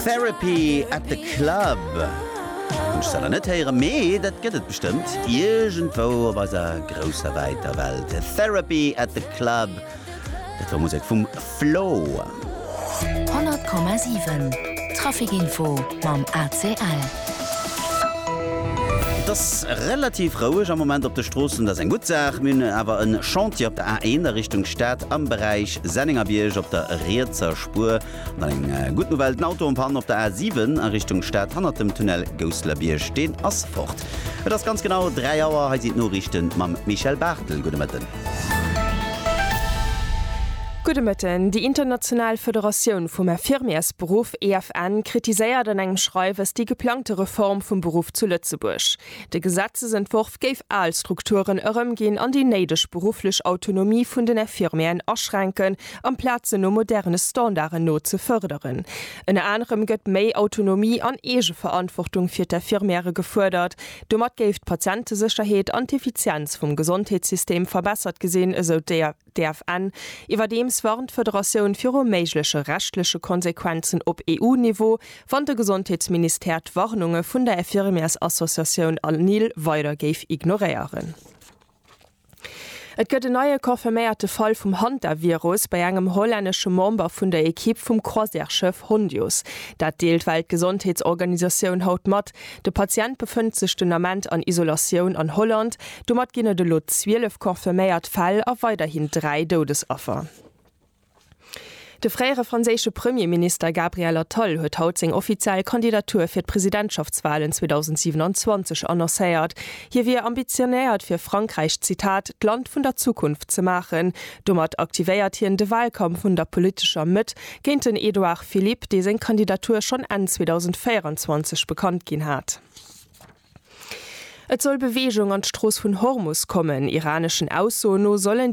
Therapy at the Club hunn ech selwer net héieren, mee dat gëtt et bestëmmt iergendwou op eiser grousser wäiter Welt. Therapy at the Club, dat war Musek vum Flo. 100,7 Traficinfo mam ACL. Et ass relativ roueg am Moment op de Stroossen, dat ass eng gutt Saach. Mir hunn awer e Chantier op der A1 a Richtung Stad am Beräich Sennengerbierg op der rietser Spuer. An dann eng gutt Nouvelle, den Auto am Panne op der A 7 a Richtung Stad hannert dem Tunnel Gousselerbierg, deen ass fort. Et ass ganz genau 3 Auer, hei sinn d'Noriichte mam Michèle Barthel. Gudde Mëtten. Gudde Mëtten. Déi international Federatioun vum Infirmiersberuff, EFN, kritiséiert an engem Schreiwes déi geplangte Reform vum Beruff zu Lëtzebuerg. De Gesetzesentworf géif al Strukturen erëmginn an déi néideg berufflech Autonomie vun den Infirmieren aschränken, amplaz se no moderne Standarden no ze fërderen. Ënner anerem gëtt méi Autonomie an Eegeverantwortung fir d'Infirmièrë gefuerdert. Domat géif d'Patientesécherheet an d'Effizienz vum Gesondheetssystem verbessert gesinn, esou d'EFN. Iwwerdeems warnt d'Federatioun viru méigleche rechtleche Konsequenzen op EU-Niveau, wann de Gesondheetsministère d'Warnunge vun der Infirmièrsassociatioun ANIL weider géif ignoréieren. Et gëtt en neie confirméierte Fall vum Hantavirus bei engem hollännesche Member vun der Ekipp vum Croisièreschëff Hondius. Dat deelt d'Weltgesondheetsorganisatioun haut mat. De Patient befënnt sech den Ament an Isolatioun an Holland. Domat ginn et elo 12 confirméiert Fäll a weiderhin dräi Doudesaffer. De fréiere franséische Premierminister Gabriel Attal huet haut seng offiziell Kandidatur fir d'Presidentschaftswalen 2027 annoncéiert. Hie wier ambitionéiert fir Frankräich, Zitat, d'Land vun der Zukunft ze maachen. Domat aktivéiert hien de Walkampf vun der politescher Mëtt géint den Edouard Philippe, dee seng Kandidatur schonn Enn 2024 bekannt ginn hat. Et soll Beweegung an d'Strooss vun Hormus kommen. Iraneschen Aussoen no sollen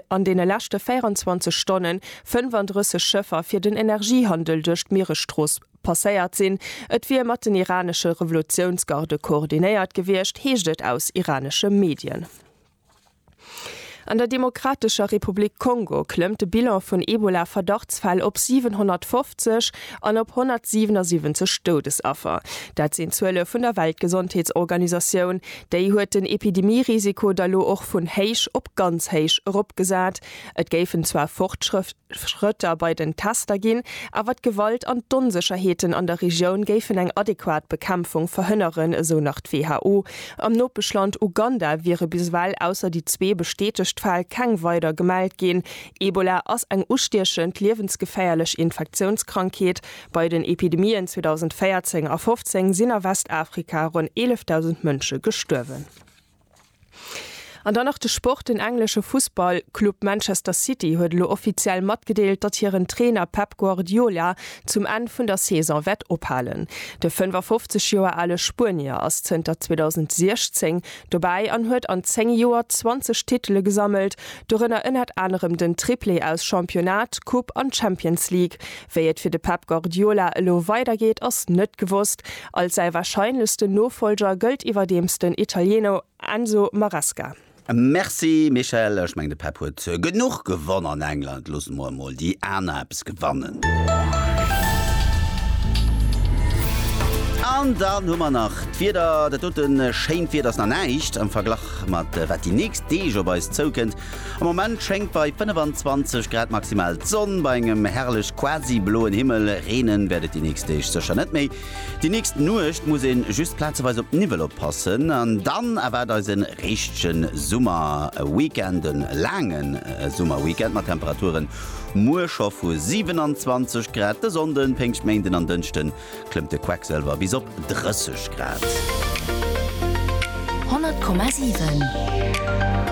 an deene leschte 24 Stonne 35 Schëffer fir den Energiehandel duerch d'Mieresstrooss passéiert sinn. Et wier mat den iranesche Revolutiounsgarde koordinéiert gewiescht, heescht et aus iranesche Medien. An der Demokratescher Republik Kongo klëmmt de Bilan vun Ebola-Verdachtsfäll op 750 an op 177 Doudesaffer. Dat sinn d'Zuele vun der Weltgesondheetsorganisatioun. Déi huet den Epidemie-Risiko da lo och vun héich op ganz héich eropgesat. Et géifen zwar Fortschrëfte. Schrëtter bei den Tester ginn, awer d'Gewalt an d'Onsécherheeten an der Regioun géifen eng adequat Bekämpfung verhënneren, esou nach d'WHO. Am Nopeschland Uganda wiere bis ewell, ausser déi zwee bestätegt Fäll, keng weider gemellt ginn. Ebola ass eng ustiechend, liewensgeféierlech Infektiounskrankheet. Bei den Epidemien 2014 a 2015 sinn a Westafrika ronn 11.000 Mënsche gestuerwen. An dann nach de Sport, Den englesche Fussballclub Manchester City huet elo offiziell matgedeelt, datt hiren Trainer Pep Guardiola zum Enn vun der Saison wäert ophalen. De 55 Joer ale Spuenier ass zënter 2016 dobäi an huet an 10 Joer 20 Titele gesammelt, dorënner ënnert anerem den Triplé aus Championnat, Coupe an Champions League. Wéi et fir de Pep Guardiola elo weidergeet, ass net gewosst. Als säi warscheinlechsten Nofollger gëllt iwwerdeems den Italieno Enzo Maresca. Merci Michèle, ech mengen de Pep huet genuch gewonn an England, loosse mer emol déi aner eppes gewannen. An dann hu mer nach d'Wieder, dat doten schéint Wieder ass nach näischt am Verglach mat wat déi nächst Deeg op eis zoukënnt. Am Moment schéngt bei 25 Grad maximal d'Sonn, bei engem herrlech quasi bloen Himmel. Reenen wäert et déi nächst Deeg sécher net méi. Déi nächst Nuecht muss een just plazeweis op Niwwel oppassen an dann erwaart eis en richtegen Summerweekend, en laangen Summerweekend mat Temperaturen muer scho vu 27 Grad. De Sonnden, Péngschtméinden an Dënschden klëmmt de Quecksëlwer bis op 30 Grad. 100,7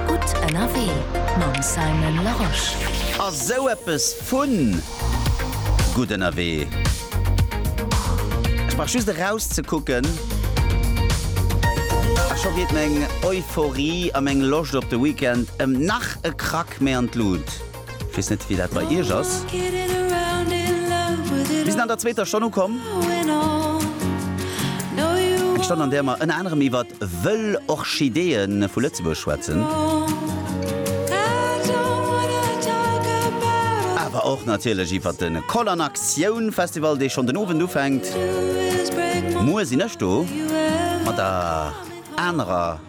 Gutt ënnerwee mam Simon Larosche. A sou eppes vu gutt ënnerwee, ech brauch just erauszekucken a scho geet meng Euphorie a meng Loscht op de Weekend ëm nach e Krack méi an d'Lut. Wees net wéi dat bei iech ass. Mir sinn an der zweeter Stonn ukomm. Eng Stonn an där mer ënner anerem iwwert wëll Orchideeën vu Lëtzebuerg schwätzen. Awer och natierlech iwwert de Koll an Aktioun Festival, dee schonn den Owend ufänkt. Muer sinn ech do mat der anerer.